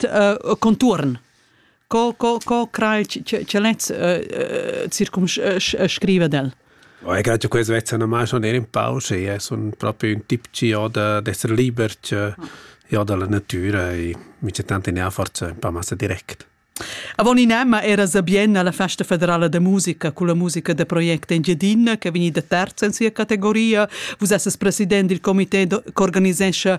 uh, contuorn co co co crai che lez circumscrive del Oh, ich glaube, questo wird dann mal schon in Pause. Ja, so ein, proprio un tipo ja, d'essere liber che, ja, dalla natura e mi c'è tanti forza un po' massa direct. Avon in Emma era sabien alla festa federala de musica con la musica de Project Engiedin che veniva terza in sia categoria. Vus esses president del comité que organizesce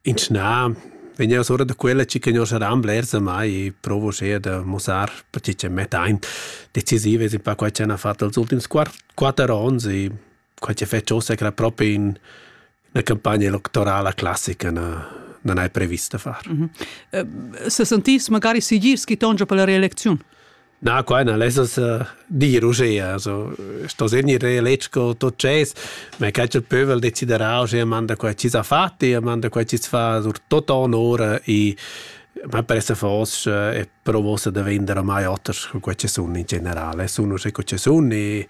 Ins na, vegn eau sura da quella chi che non saran blers ormai provo eir da mussar perche ch'el mettain. Decisiv es ün pa quai ch'han fat els ultims quatter ons e quai ch'el fetsch uossa era propi ün 'na campagna electorala classica na non hai previst da far. Mh-mh. S'sentiss magari sigir schi tongia per la reelecziun? Na, quai na lessas uh, dir uschea. Also, sto segnir eletg co tot ces, ma che il pövel deciderà uschea manda quai chi s'ha fat e manda quai chi fa sur tot onor e ma per se fos e provosa da vender mai oters con quei che sun in generale sun uschè co che sun e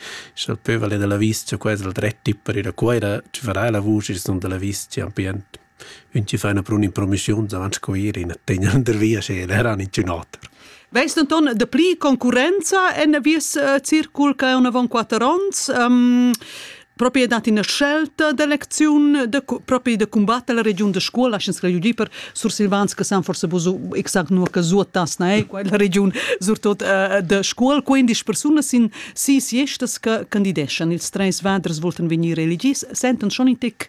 il pövel della viscia quasi il dret per ir a cuoira ci farà la vuce sun della viscia ambient Ün chi fa üna prun'impromischiun davant Scuir in tegnender via sera era ninchün oter. Veis denton dapli concurrenza en vies uh, circul che un avon quatter onns? Um, propi dat ina scelta d'elecziun de, propi de combatte la regiun de scuola lascians regiun per sursilvans che san forse buso exact nur che zuotas na è quella regiun surtot uh, de scuol 15 persone sin si siestas che candideschan ils treis vaders volten venir elegis sentan schon in tic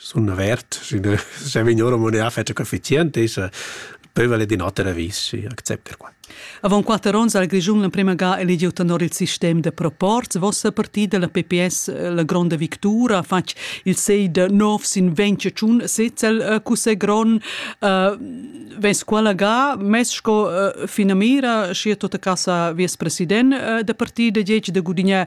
Sun avert, sch'üna scha vegn ora moneà fetscha coefficient, esa pövel ed in oter avis, schi accept per qua. Avant quatter ons ha il Grischun l'emprema ga eligiu tenor il sistem da proporz. Vossa partida, la PPS, la gronda victura, ha fatg il sei da nov sin ventschun setzel cussè gron. Uh, Vens quella ga, mes sco uh, finamira, schi è tota casa vies president uh, da partida, dieci da gudignà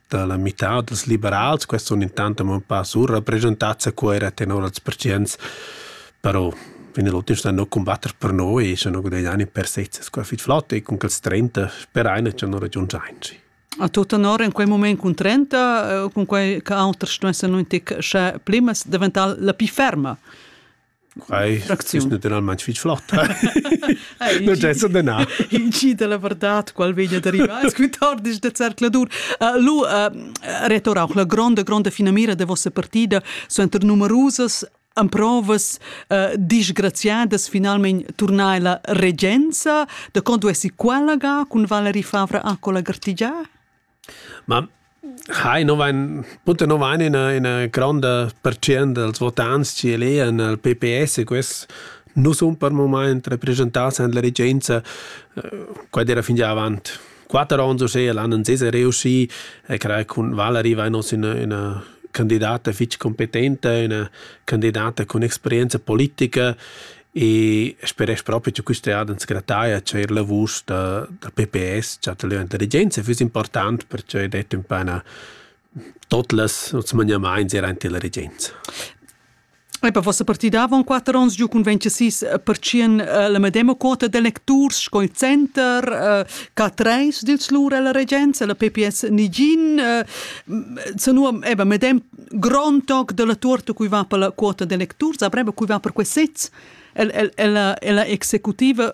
da la mità dals liberals, questi sun intant amo ün pa surrappresentats a Cuera tenor als pertschients, però in l'ultim stan no cumbatter per noi e schon ho gudagnà in per sezzas qua fich flott e cun quels 30 speraina cha no ragiundschainci. A tu tenor in quei moment cun 30, eh, cun quei che auters stuessen nun tic sche plimas, daventar la più ferma. Acziun natiralmain fitg flott. In gi da la vardad, qual vegn ad arrivar scu tard disch de zercladur. Uh, lu uh, retor auch la gronda, gronda finamira de vossa partida suenter numerusas amprovas uh, disgraziadas finalmente tornai la regenza, de quando essi qualaga cun Valerie Favre a cola gartigia? Ma hai nu vain puter nu vain üna üna gronda pertschient dals votants chi elean al PPS e quels nu sun per mumaint represchentats in la regenza quai d'eira fingià avant quatter ons uschea, l'an ins es reuschì e crai cun Valari vain hoz üna üna candidata fich cumpetenta, üna candidata cun experienza politica E speresch propi cha quista eada ans grataja cha eir la vusch da da PPS, cha da l'intelligenza füss important, perche id es ün pa üna tuot las noss maniamaints eir aint illa regenza. Epa vossa partida avon quatter ons giu cun 26 percient la medema quota d'electurs sco il Center, ca treis dils lur ella regenza, la PPS nigin, zanua eba medem grond toc della tuorta cui va per la quota de lecturs, avreva cui va per quei sez. El, el, el, la, la executiva